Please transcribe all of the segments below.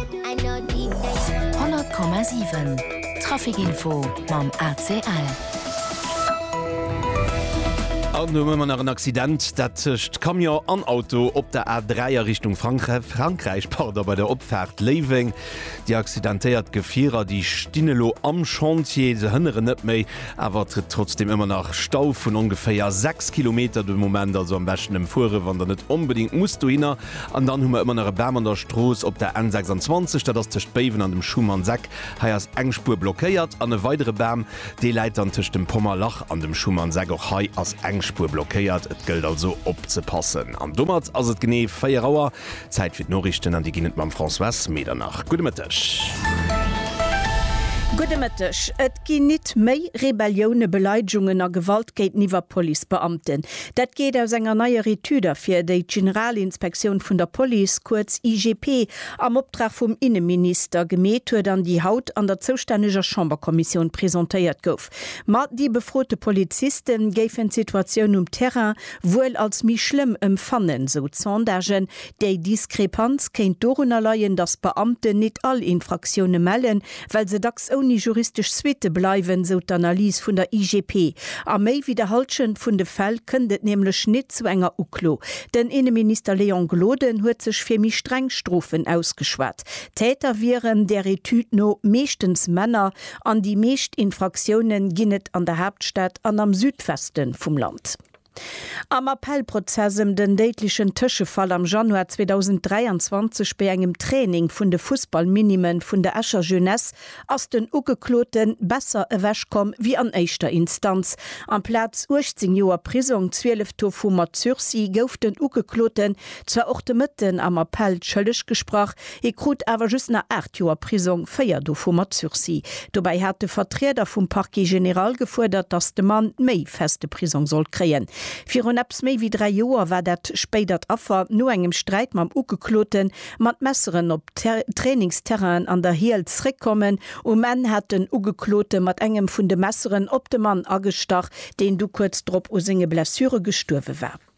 100,7 Trafikinfo mam ACL. An elo hu mer nach en Accident, dat tëscht Camion an Auto op der A3 a Richtung Frankräich, pardon, bei der Opfaart Léiweng. Déi accidentéiert Gefierer, déi stinn elo am Chantier, se hënneren net méi, awer et gëtt trotzdeem ëmmer nach Stau vun ongeféier 6 Kilometer de Moment. Also am beschten emfuere wann der net onbedéngt musst dohinner. An dann hu mer ëmmer nach e Bam an der Strooss op der N26, dat ass tëscht Béiwen an dem Schumannseck. Hei ass eng Spuer blockéiert. An e weidere Bam, dee läit dann tëscht dem Pommerlach an dem Schumannseck. Och hei ass eng Spuer blockéiert. Et gëllt also opzepassen. An domat ass et genee 4 Auer. Zäit fir d'Noriichten, an déi ginn et mam Françoise Medernach. Gudde Mëtteg. Gudde Mëtteg. Ginn nit méi Rebellioune, Beleidegungen a Gewalt géinteniwwer Policebeamten? Dat geet aus enger neier Etüd ervir, déi d'Generalinspektioun vun der Police, kuerz IGP, am Optrag vum Inneminister gemeet huet an déi haut an der zoustänneger Chamberkommissioun presentéiert gouf. Ma déi befrote Poliziste géifen d'Situatioun um Terrain wuel als méi schlëmm emfannen, sou d'Sondagen. Déi Diskrepanz kéint dorunner leien, datt d'Beamten nit all Infraktioune mellen, well se dacks ouni juristesch Suitte bleiwen, sou d'Analys vun der IGP. A méi wéi der Hallschent vun de Fäll kënnt et nämlech nit zu enger Uklo. Den Inneminister Léon Gloden huet sech fir méi streng Strofen ausgeschwat. Täter wieren där Etüd no meeschtens Männer an déi meescht Infraktioune ginn et an der Haaptstad an am Südweste vum Land. Am Appellprozess ëm den déidlechen Tëschefall am Januar 2023 bei engem Training vun de Fussballminime vun der Escher Jeunesse ass den Ugeklote besser ewech komm wéi an éischter Instanz. Amplaz 18 Joer Prisong, 12 dovu mat Sursis, gouf den Ugekloten zwar och de Mëtten am Appell schëlleg gesprach, Hie krut awer just nach aacht Joer Prisong, véier dovu mat Sursis. Dobäi hat de Vertrieder vum Parquet général gefuerdert, datt de Mann méi feste Prisong sollt kréien. Virun eppes méi wéi dräi Joer war dat spéidert Affer no engem Sträit mam Ugeklote mat Messeren op Trainingsterrainen an der Hiel zréckkommen. Um Enn hat den Ugeklote mat engem vun de Messeren op de Mann agestach, deen du kuerz drop u senge Blessure gestuerwe war.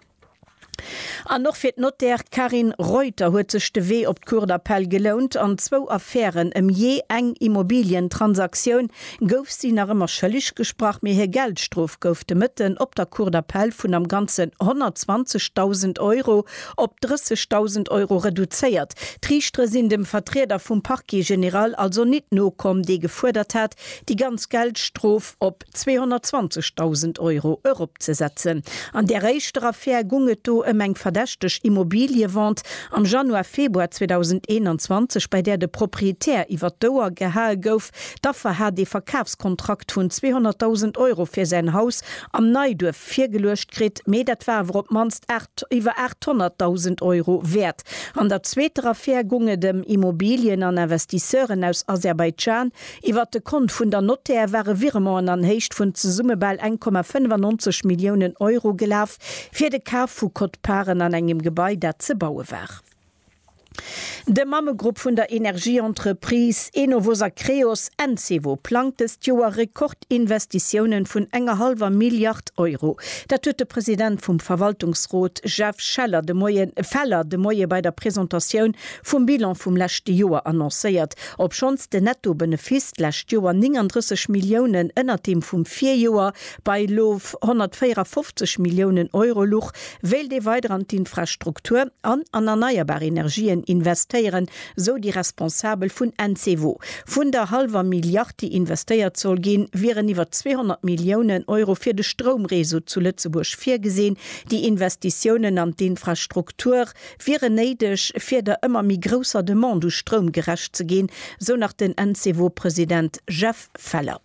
An och fir d'Notaire Carine Reuter huet sech de Wee op d'Cour d'appel gelount. An zwou Affären ëm jee eng Immobilientransaktioun gouf si nach ëmmer schëlleg gesprach, mee hir Geldstrof gouf de Mëtten op der Cour d'appel vun am Ganzen 120.000 Euro op 30.000 Euro reduzéiert. D'Riichtere sinn dem Vertrieder vum Parquet général also nit nokomm, dee gefuerdert hat, déi ganz Geldstrof op 220.000 Euro eropzesetzen. An där éischter Affär gung et do ëm eng verdächteg Immobiliëvente am Januar, Februar 2021, bei där de Proprietär iwwer d'Ouer gehae gouf. D'Affer hat ee Verkafskontrakt vun 200.000 Euro fir säin Haus am Neiduerf virgeluecht kritt, mee dat war awer op d'mannst iwwer 800.000 Euro wäert. An der zweeter Affär gung et ëm Immobilien an Investisseuren aus Aserbaidschan, Iwwert de Kont vun der Nothèr ware Virementen an Héicht vun zesumme bal eng Komma 95 Milliounen Euro gelaf fir de Kaf vu Quote-parten an engem Gebai, dat ze baue war. De Mammegrupp vun der Energieentreprise Enovos a Creos, Encevo, plangt dëst Joer Rekordinvestitiounen vun enger hallwer Milliard Euro. Dat huet de President vum Verwaltungsrot Jeff Scheller de Moie Feller de Moie bei der Presentatioun vum Bilan vum leschte Joer annoncéiert Obschonns de Netto-Benefiss d'lescht Joer 39 Milliounen ënnert deem vum Virjoer, bei elo 154 Milliounen Euro, luch, wéilt ee weider an d'Infrastruktur an an erneierbar Energien investéieren, sou déi Responsabel vun Encevo. Vun der hallwer Milliard, déi investéiert soll ginn, wieren iwwer 200 Milliounen Euro fir de Stroumreseau zu Lëtzebuerg virgesinn. Déi Investitiounen an d'Infrastruktur wieren néideg, fir der ëmmer méi grousser Demande u Stroum gerecht ze ginn, sou nach den Encevo-President Jeff Feller.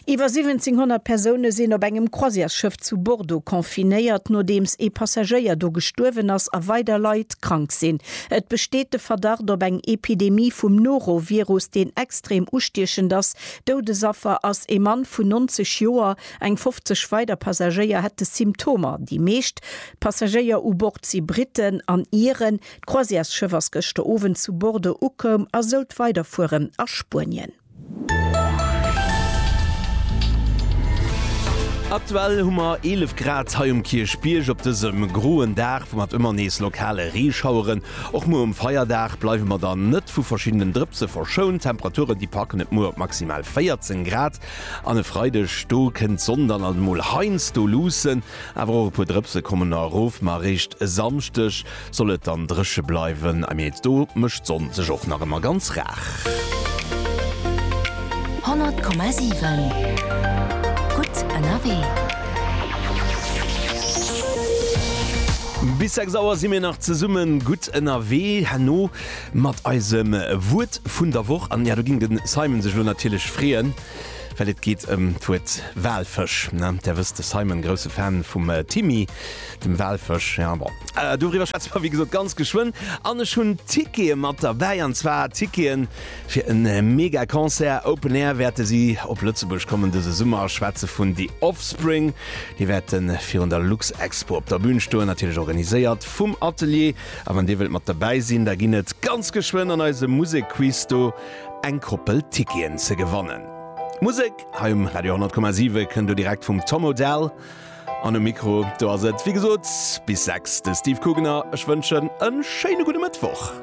Iwwer 1.700 Persoune sinn op engem Croisièresschëff zu Bordeaux confinéiert, nodeems ee Passagéier do gestuerwen ass a weider Leit krank sinn. Et besteet de Verdacht op eng Epidemie vum Norovirus, deen extrem ustiechend ass. Doudesaffer ass ee Mann vun 90 Joer. Eng 50 weider Passagéier hätte Symptomer. Déi meescht Passagéier u Bord si Britten an Iren. D'Croisièresschëff ass gëschter Owend zu Bordeaux ukoum a sollt weiderfueren a Spuenien. Aktuell hu mer 11 Grad hei um Kierchbierg. Op dësem groen Dag mat ëmmer nees lokale Reeschaueren, och muer um Feierdag, bleiwe mer dann net vu verschiddenen Drëpse verschount. D'Temperature, déi packen et muer op maximal 14 Grad. An e Freideg, do kënnt d'Sonn dann alt emol heiansdo luussen, awer och e puer Drëpse kommen nach erof. Ma eréischt e Samschdeg soll et dann dréche bleiwen, mee do mécht d'Sonn sech och nach ëmmer ganz rar. 100,7 Gutt ënnerwee. Bis 6 Auer si mir nach zesummen gutt ënnerwee. Herno. Mat eisem Wuert vun der Woch. An jo, do ging den Simon sech elo natierlech freeën, well et geet ëm d'Wuert Walfësch. Där wësst, de Simon, grousse Fan vum Timmy, dem Walfësch. Jo, bon, doriwwer schwätze mer wéi gesot ganz geschwënn. An ech hunn Tickete mat derbäi, an zwar Tickete fir e mega Concert Open Air. Wäerte si op Lëtzebuerg kommen dëse Summer? Ech schwätze vun The Offspring. Déi wäerte virun der Luxexpo op der Bün stoen, natierlech organiséiert vum Atelier. A wann dir wëllt mat derbäi sinn, da ginn et ganz geschwënn an eisem Musekquiz do eng Koppel Ticketen ze gewannen. D'Musek hei um Radio 10,7 kënnt do direkt vum Tom Odell. An um Mikro do ass et wéi gesot bis 6 de Steve Kugener. Ech wënschen e schéine gudde Mëttwoch.